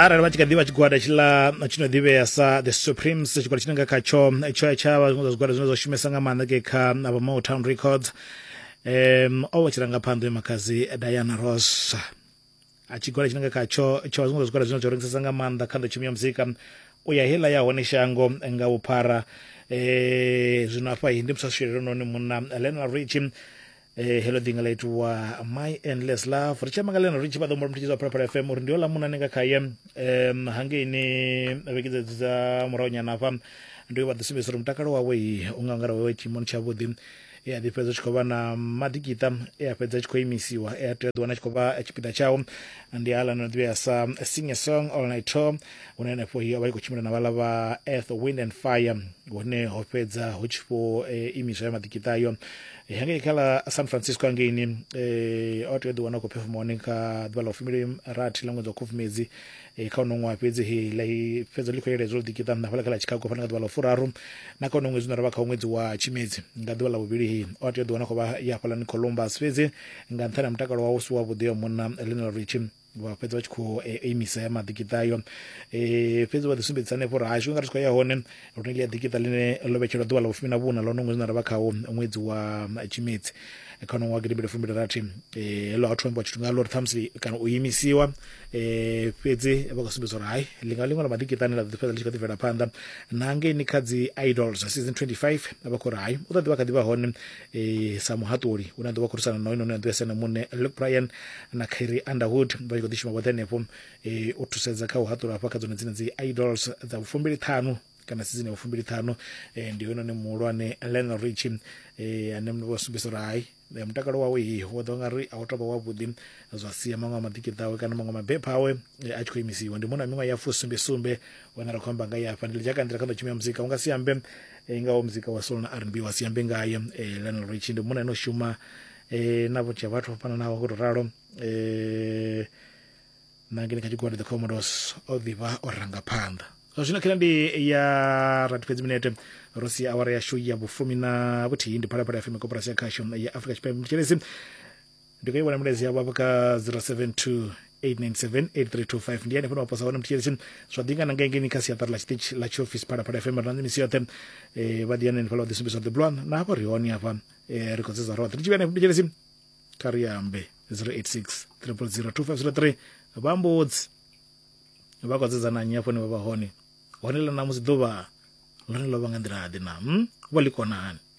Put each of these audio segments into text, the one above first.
arali vha tshi kha ḓivha tshigwada tshiḽa tshi no ḓivhea sa the supremes tshigwada tshine nga khatsho tsho tsha vha zwiṅwe zwa zwigwada zwine zwa shumesa nga maanḓa ke kha vha motown records um o vha tshirangaphanḓa ya makhadzi diana ross a tshigwada tshine nga khatsho tsho vha zwiṅwe zwa zwigwada zwine zwa rengisesa nga maanḓa kha nḓowetshumo ya muzika u ya heiḽa ya hone shango nga vhuphara um zwino afha hi ndi musaswiri lononi munna lenal richi Eh, hello ḓinga ḽa itiwa my endless love ri tshi amba nga ḽeno ri tshi vha ḓombolo mutshidzi wa phalaphala fm uri ndi yo lamuna ni nga khaye um hangeini vhekidza dzi dza murahu nyana hafha ndi vha ḓi sumbedzisa uri mutakalo wawe i u nga ngara wawe tshiimoni tshavhuḓi e a ḓi fhedza tshi khou vha na maḓikiṱa e a fhedza tshi khou imisiwa e a tea ḓiwana tshi khou vha tshipiḓa tshao ndi aḽa no ḓivhea sa sing a song all night tour hune henefho hi o vha i khou tshimbila na vhala vha earth wind and fire hune ho fhedza hu tshi vho eh, imiswa ya maḓikiṱa ayo Eh, hangei kha ḽa san francisco hangeini eh, o tea u ḓiwana a khou phefoma hone kha ḓuvha ḽa u fumili rathi ḽa ṅwedzi wa khubvumedzi eh, kha uno ṅwaha fhedzi he ḽa i- fhedzo ḽi khou yeledzwa u ḓikiṱa nṋa hafhaḽa kha ḽa chicago fhano nga ḓuvha ḽa u furaru na kha uno ṅwedzi une ra vha kha ṅwedzi wa tshimedzi nga ḓuvha ḽa vhuvhili he o a tea u ḓiwana a khou vha ya hafhaḽani columbus fhedzi nga nṱhani ha mutakalo wawe u si wavhuḓi wa munna lionel richie vha fhedza vha tshi khou e, e, imisa ya maḓikiṱa ayo e, fhedzi vha ḓisumbedzisa hanefho uri hashu nga ri tshi khou ya hone lune ḽi ya ḓikiṱa ḽine ḽo vhetshelwa ḓuvha ḽa vhufumi na vhuna ḽone ṅwedzi na ra vha khawo ṅwedzi wa tshimedzi kha nongo wa gidimbili fumbili rathi heḽo ha thu ambiwa tshithu ngaḽo uri ṱhamusi kana u imisiwa um fhedzi vha khou sumbedza uri hai ḽi nga ḽiṅwe ḽa maḓikiṱani ḽa ḓo fhedza ḽi tshi kha ḓi bvela phanḓa na ngeini kha dzi idols season 25 vha khou ri hai u ḓo ḓivha kha ḓi vha hone e, sa muhaṱuli une a ḓo vha khorisana na hoyunoni a ḓo yasena muṋe luke brian na khairi underwood vha tshi khou ḓi shuma vhoṱhe henefho e, u thusedza kha u haṱula hafha kha dzone dzine dzi idols dza vhufumbili ṱhanu kana sizini ya vhufumbili ṱhanu e, ndi hoyunoni muhulwane lionel rich e, ane mndu vha sumbedzisa uri hai e, mutakalo wawe hi wo ḓo nga ri a u tovha wavhuḓi zwa sia maṅwe a maḓikiṱa awe kana maṅwe mabepha awe e, a tshi khou imisiwa ndi muṅwe na miṅwaha ya fusumbe sumbe wana ri khou amba nga ya fha ndi lidzhaka nḓila kha ḓo tshumela muzika u nga si ambe e, ngaho muzika wa soul na rnb wa siambe ngaye e, lionel richi ndi munna ane o shuma e, na vhunzhi ha vhathu vho fhananaho ngo to ralo e, na ngene kha tshigwada the commodos o ḓivha o ranga phanḓa zwa zwino khela ndi ya rathi fhedzi minete ro sia awara yashu ya vhufumi na vhuthihi ndi phalaphala ya fm koporasi ya khasho ya afrika tshipembe mtshelezi ndi khou i vhona milaedza yavho hafha kha 0728978325 ndi hanefho ni waposa hone mutshitshitshi zwa ḓingana nga ngeni kha siaṱari ḽa tshiṱitshi ḽa tshiofisi phalaphala fm rina ndi misi yoṱhe eh, vha ḓi ya nenefhala vha ḓi sumbisa ḓi bulwana na hafha ri hone hafha eh, ri khou dzedza roṱhe ri tshi vhuya hanefho mutshitshitshi kha ri ambe 086 0002503 vha mbudzi vha khou dzedza na nnyi hafho ni vha vha hone hone ḽa ṋamusi ḓuvha ḽone ḽo vha nga nḓila ḓe na mm? vho ḽi kona hani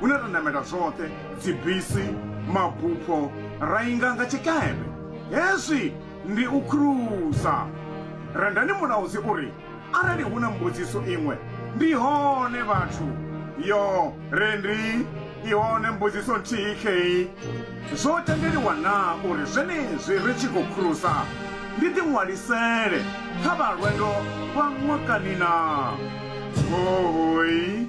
hune ra namela zwoṱhe, dzibisi, mabufho, ra inga nga tshikepe. Hezwi ndi u khurusa. Rendani Mulaudzi u ri, Arali hu na mbudziso iṅwe, ndi hone vhathu. Yo, Rendi, i hone mbudziso nthihi khei. Zwo tendeliwa naa uri zwenezwi ri tshi khou khurusa ndi ḓiṅwalisele kha vha lwendo lwa ṅwakani naa? Hoooi!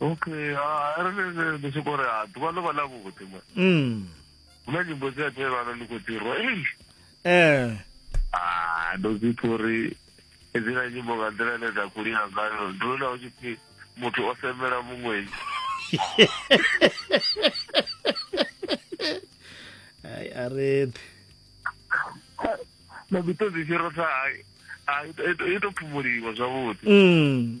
okay ah, arali ndi soko ri ha ḓuvha ḽo vha ḽa vhuḓi ma mm. hu na nyimbo dzi a tevhana ndi khou ḓirwa ei eh. ah, ndo dzi pfa uri hedzila nyimbo nga nḓila ine dza khou lina ngayo ndi lona hu tshi pfi muthu o semela muṅwenyi ai areḓi na mito dzi fhirotsa i to phumuliwa zwavhuḓi mm.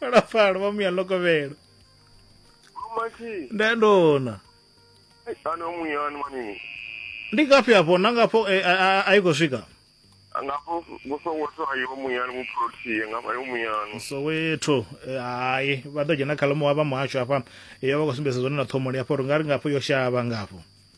phalaphala vha muya lokovhelo nda ndona ndi ngafhi afho na ngafho eh, a- a- a i khou swika ngafho kusoweto ayiwo muyani muprotie ngafho ayiwo muyani soweto eh, hayi vha ḓo dzhena khalamuwa vha muhasho afha yo vha khou sumbedza zwone na ṱhomoni afho ri nga ri ngafho yo shavha ngafho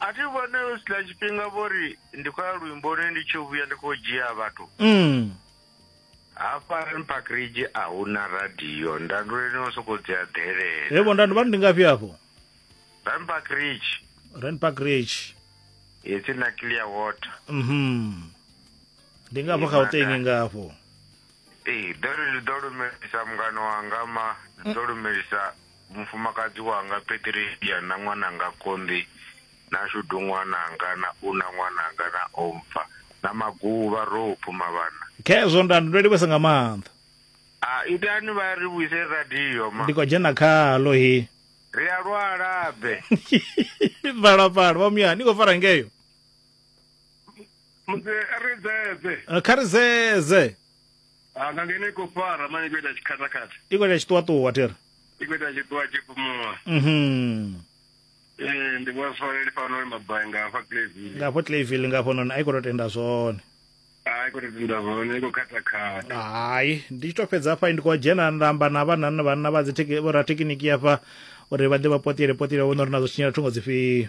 a thi vhone u sila tshifhinga vho ri ndi khou ya luimboni ndi tshi vhuya ndi khou dzhia vhathu mm. hafha mpakridge a hu na radio ndanduleni o sokou dzi aḓelela evo ndanduvani ndi ngafhi afho rampakridge rampakridge ipfi na clear water mhm ndi ngafho gauteng ngafho ee ḓo ri ndi ḓo lumelisa mungano wanga ma ḓo lumelisa Mufumakadzi wanga Patricia na ṅwananga Conley na Shudu ṅwananga na Una ṅwananga na Ompfa na Maguvha ro u phuma vhana. Khezwo nda ndo livhesa nga maanḓa. A itani vha ri vhuise radio ma. Ndi khou dzhena khalo he. Ri a lwala be. Phalaphala vha muya ni khou fara ngeyo. Musi ri dzedze. Kha ri dzedze. Ah, nga ngeno i khou fara mani i khou ita tshikhatakhatha i khou ita tshiṱuwaṱuwa thero i khou ita tshiṱuwa tshi fhumuwa mhm ee ndi vhona swareli fano ri mabai nga hafha clavile nga hafho clavile nga hafhononi a i khou tou tenda zwone a i khou tou tenda zwone i khou khatakhatha hai ndi tshi tou fhedza hafha ndi khou dzhena nda amba na vhanana vhanna vha dzi vhorathekiniki hafha uri vha ḓe vha potele potele vhona uri nazwo tshinyela thungo dzifhio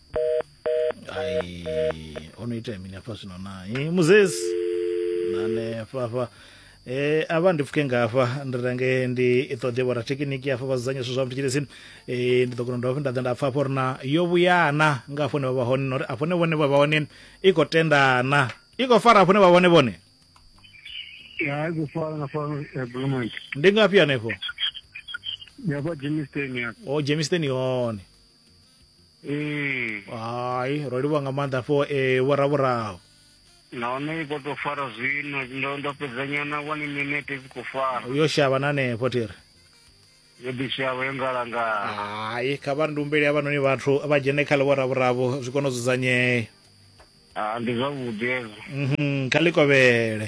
ai o no ita mini hafha zwino na i muzesi nane hafha hafha Eh, avha ndi pfuke ngafha ndi renge ndi i ṱoḓe vho rathekiniki hafha vha dzudzanya zwithu zwa mutshilisi eh, ndi ḓo kona u dovha futhi nda ḓa nda pfa hafho uri na yo vhuyana nga hafho hune vha vha hone na uri afho hune vhone vha vha hone i khou tendana i khou fara hafho hune vha vha hone vhone ya i khou fara na fano ya bulumenti ndi ngafhi hanefho ya kwa jimisteni ya o jameson i hone ee hai ro livhuwa nga maanḓa fo e vhoravhoraho nahone i khou tou fara zwino ndo ndo fhedzanyana one minute i khou fara yo shavha na hanefho thiri yo ḓishavha yo ngalangala hai kha vha ndumbeli havhanoni vhathu vha dzhene kha ḽivhoravhoravho zwi kone u dzudzanyea ah, ndi zwavhuḓi hezwo mhm, kha ḽi kovhele